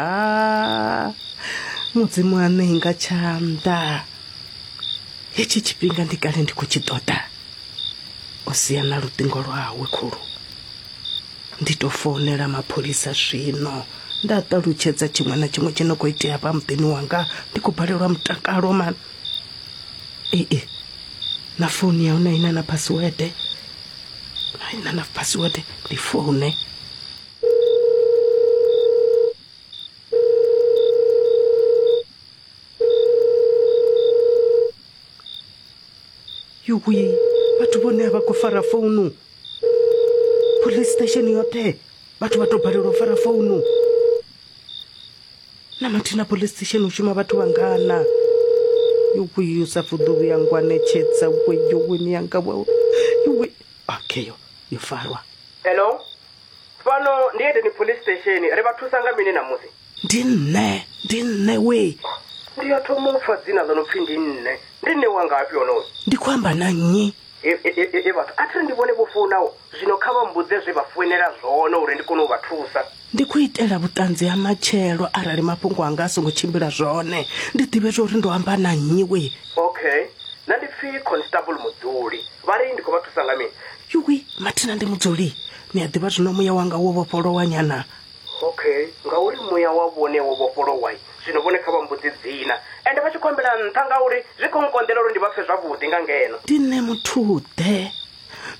aa mudzimu ane inga tshanḓa hetshi tshifhinga ndi kale ndi khou tshi ṱoḓa o sia na luṱingo lwawe khulu ndi tou founela mapholisa zwino nda ṱalutshedza tshiṅwe na tshiṅwe tshi no khou itea hafha muḓini wanga ndi khou balelwa mutakalo mani ee na founu ya hone ina na phasiwede ina na phasiwede ndi foune yuwi vhathu vhone a vha khou fara founu police station yoṱhe vhathu vha tou balelwa u fara founu na mathina police station u shuma vhathu vhangana yokuyu sa fuḓuvu ya ngwanetshedza weyoweni yanga wawe yowe okay yo yo farwa hello Fhano ndi Edeni Police Station. Ri vha thusa nga mini ṋamusi? Ndi nṋe. Ndi nṋe wee. Ndi ya thoma u pfa dzina ḽo no pfi ndi nṋe. Ndi nṋe wa ngafhi honoyu? Ndi khou amba na nnyi? E, e, e, e, e vhathu, a thi ri ndi vhone vho founaho. Zwino kha vha mmbudze zwe vha foinela zwone uri ndi kone u vha thusa. Ndi khou itela vhuṱanzi ha matshelo arali mafhungo anga a songo tshimbila zwone, ndi ḓivhe zwa uri ndo amba na nnyi wee. Okay. Nṋe ndi pfi Constable Mudzuli. Vha ri, Ndi khou vha thusa nga mini? Yuwi, mathina ndi mudzuli. Ni a ḓivha zwino muya wanga wo vhofholowa nyana. Okay, ngauri muya wa vhone wo vhofholowa, zwino vhone kha vha mmbudze dzina. Ende vha tshi khou ambela nṱha ngauri zwi khou nkonḓela uri ndi vha pfe zwavhuḓi nga ngeno. Ndi nṋe muthu-ḓe.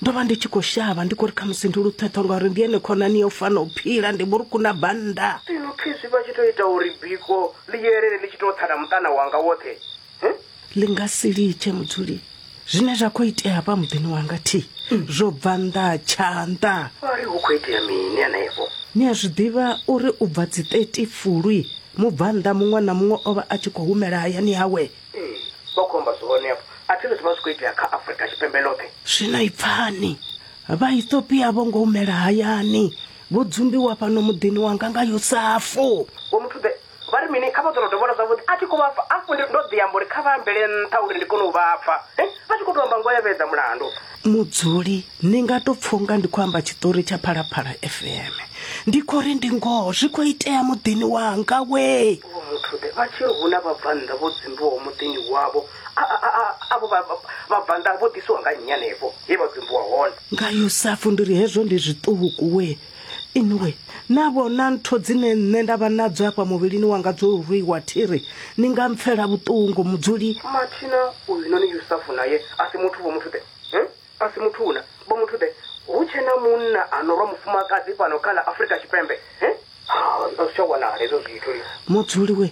Ndo vha ndi tshi khou shavha, ndi khou ri khamusi ndi luṱhethwa ngauri ndi ene khonani ya u fana u phila, ndi vhurukhu na bannda. Zwino khezwi vha tshi tou ita uri biko ḽi yelele ḽi tshi tou tsa na muṱana wanga woṱhe, ḽi nga si litshe mudzuli zwine zwa khou itea hafha muḓini wanga thi zwo bva nnḓa ha tshanḓa ari hu khou itea mini hanefho ni a zwi ḓivha uri u bva dzi 30 fulwi mubvannḓa muṅwe na muṅwe o vha a tshi khou humela hayani hawe ee vha khou amba zwone afho a thi zwi vha zwi khou itea kha afurika tshipembe ḽoṱhe zwino i pfani vhaethopia vho ngo humela hayani vho dzumbiwa fhano muḓini wanga nga yosafu vho muthu ḓe Vha ri mini? Kha vha ḓo no dovholola zwavhuḓi. A thi khou vha pfa. Afho ndi ndo ḓi amba uri kha vha ambele nṱha uri ndi kone u vha pfa. He, vha tshi khou tou amba ngoho ya vhedza mulandu. Mudzuli, Ni nga tou pfa unga ndi khou amba tshiṱori tsha Phalaphala FM. Ndi khou ri ndi ngoho zwi khou itea muḓini wanga wee. Vho Muthuḓe, Vha tshi ri hu na vhabvannḓa vho dzumbiwaho muḓini wavho, a, a, a, a, avho vha, vha, vhabvannḓa vho ḓisiwa nga nnyi hanefho he vha dzumbiwa hone? Nga Yusafu, Ndi ri hezwo ndi zwiṱuku wee. inwi na vhona ntho dzine nṋe nda vha nadzo afha muvhilini wanga dzo rwiwa thiri ni nga mpfela vhuṱungu mudzuli mathina uyu noni yusafu naye a si muthu vho muthu ḓe hmm? a si muthu una vho muthu ḓe hu tshe na munna a no rwa mufumakadzi fhano kha ḽa afrika tshipembe hmm? ha a zwi tsha wanala hezwo zwithu mudzuli we